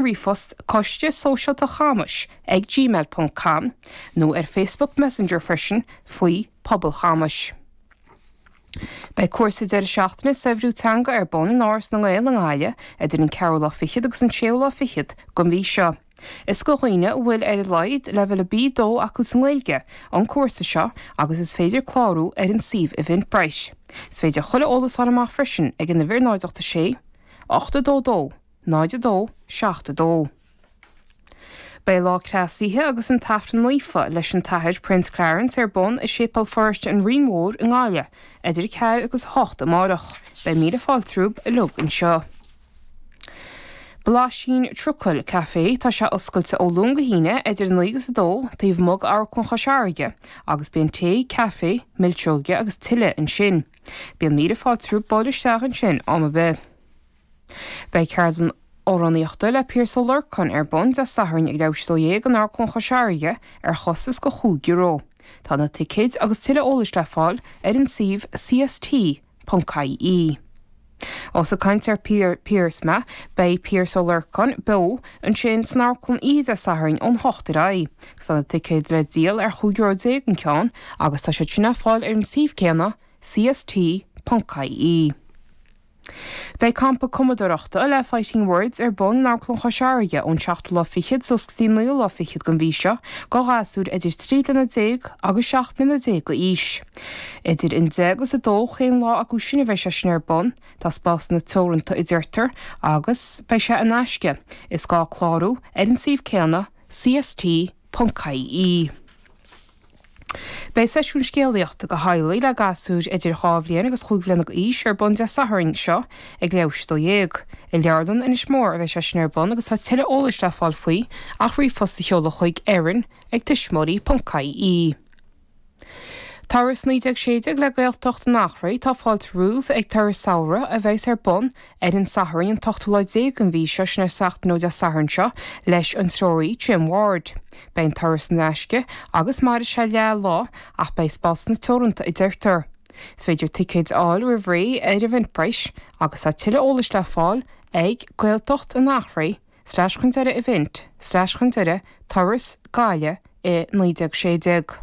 Coiste Sóisialta Chamais ag gmail ponc com nó ar Facebook Messenger freisin faoi, Pobal Chamais. Beidh cúrsa deireadh seachtaine 'Saibhriú Teanga' ar bun in Áras na nGael i nGaillimh idir an ceathrú lá fichead agus an séú lá fichead den mhí seo. Is do dhaoine a bhfuil ar a laghad leibhéal a B2 acu sa nGaeilge an cúrsa seo agus is féidir clárú ar an suíomh Eventbrite. Is féidir chuile eolas a fháil amach freisin ag an uimhir 0 8 6 8 2 2 0 2 7 2 Beidh Lá Cneasaithe agus an tAifreann Naofa leis an tAthair Prince Clarence ar bun i Séipéal Pharóiste an Rinn Mhór i nGaillimh idir 4 agus 8 amárach. Beidh míle fáilte romhaibh uilig anseo. Blaisín Trucail Caife Tá sé oscailte ó Luan go hAoine idir 9 agus 2 taobh amuigh d'Amharclann Chois Fharraige agus bíonn tae, caife, milseoga agus tuilleadh ansin. Bíonn míle fáilte romhaibh buail isteach ansin am ar bith. Beidh ceardlann amhránaíochta le Pearse Ó Lorcáin ar bun Dé Sathairn ag leathuair tar éis a 12 in Amharclann Chois Fharraige ar chostas de chúig euro. Tá na ticéid agus tuilleadh eolais le fáil ar an suíomh cst.ie. Ós ag caint ar Pearse beidh Pearse Ó Lorcáin beo ansin san amharclann oíche Dé Sathairn ón hocht ar aghaidh agus tá na ticéid le díol ar chúig euro déag an ceann agus tá siad sin le fáil ar an suíomh céanna cst.ie. Beidh campa cumadóireachta le Fighting Words ar bun in Amharclann Chois Fharraige ón seachtú lá fichead suas go dtí naoú lá fichead den mhí seo do ghasúir idir trí bliana déag agus seacht mbliana déag d'aois. Idir an deich agus a dó chaon lá acu sin a bheidh sé sin ar bun, tá spásanna teoranta a deirtear, agus beidh sé in aisce, is gá clárú ar an suíomh céanna, CST.ie. Beidh seisiún scéalaíochta do theaghlaigh le gasúir idir dhá bhliain agus chúig bhliana d'aois ar bun Dé Sathairn seo ag leathuair tar éis a 12. I Leabharlann Inis Mór a bheidh sé sin ar bun agus tá tuilleadh eolais le fáil faoi ach ríomhphost a sheoladh chuig, Erin ag tuismitheoirí ponc ie. Turas 1916 le Gaeltacht an Achréidh Tá fáilte romhaibh ag turas samhraidh a bheas ar bun ar an Satharn, an t-ochtú lá déag den mhí seo, sin seachtain ó Dé Sathairn seo, leis an treoraí, Jim Ward. Beidh an turas in aisce, agus mairfidh sé leath lá, ach beidh spásanna teoranta, a deirtear. Is féidir ticéid a fháil roimh ré ar Eventbrite, agus tá tuilleadh eolais le fáil ag, Gaeltacht an Achréidh slais chun deiridh event slais chun deiridh turas Gaillimh i 1916.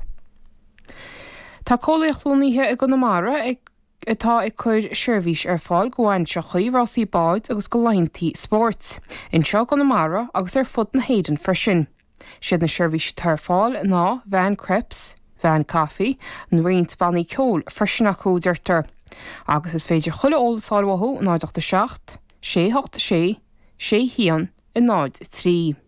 Tá Comhpháirtíocht Lonnaithe i gConamara ag. atá ag cur seirbhís ar fáil do bhainseachaí, rásaí báid agus do laethanta spóirt, anseo i gConamara agus ar fud na hÉireann freisin. Siad na seirbhísí atá ar fáil ná veain crêpes, veain caife, and roinnt bannaí ceoil freisin acu, deirtear. Agus is féidir chuile eolas a fháil uathu 087 686 6103.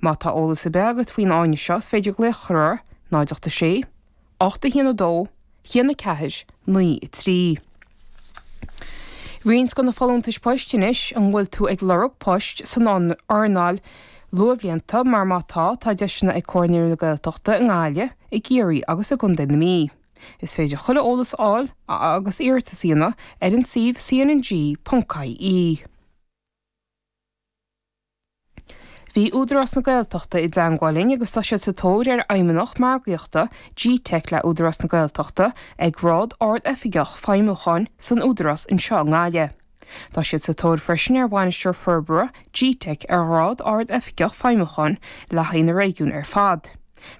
Má tá eolas ar bith agat faoin fháinne seo is féidir glaoch a chur orthu, 086 81 2 1 4 9 3. Roinnt de na folúntais poist anois, an bhfuil tú ag lorg poist san earnáil luathbhlianta? Mar má tá, tá deiseanna ag Comhar Naíonraí na Gaeltachta i nGaillimh, i gCiarraí agus i gContae na Mí. Is féidir chuile eolas a fháil, agus iarratas a dhéanamh, ar an suíomh cnng.ie. Bhí Údarás na Gaeltachta i dteangmháil linn agus tá siad sa tóir ar Fheidhmeannach Margaíochta G-teic le Údarás na Gaeltachta ag grád Ard-Oifigeach Feidhmiúcháin san Údarás anseo i nGaillimh. Tá siad sa tóir freisin ar Bhainisteoir Forbartha G-teic ar ghrád Ard-Oifigeach Feidhmiúcháin le haghaidh na réigiún ar fad.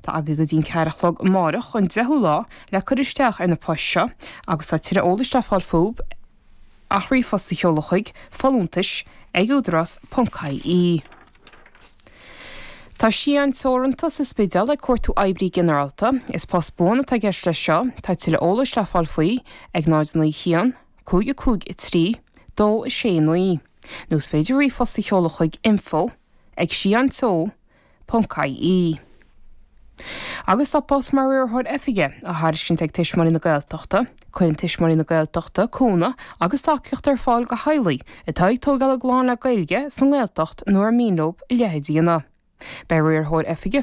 Tá agaidh go dtí an ceathair a chlog amáireach, an deichiú lá, le cur isteach ar na poist seo agus tá tuilleadh eolais le fáil fúthu. Ach ríomhphost a sheoladh chuig, folúntais, ag údarás ponc ie. Tá Sian Teoranta sa Spidéal ag cuartú oibrí ginearálta. Is post buan atá i gceist leis seo. Tá tuilleadh eolais le fáil faoi ag 091 553 269 nó is féidir ríomhphost a sheoladh chuig, info, ag, Sian Teo, ie. Agus tá post mar Riarthóir Oifige á thairiscint ag Tuismitheoirí na Gaeltachta, cuireann Tuismitheoirí na Gaeltachta cúnamh agus tacaíocht ar fáil do theaghlaigh atá ag tógáil a gclann le Gaeilge sa nGaeltacht nó ar mian leo a leithéid a dhéanamh. Beidh Riarthóir Oifige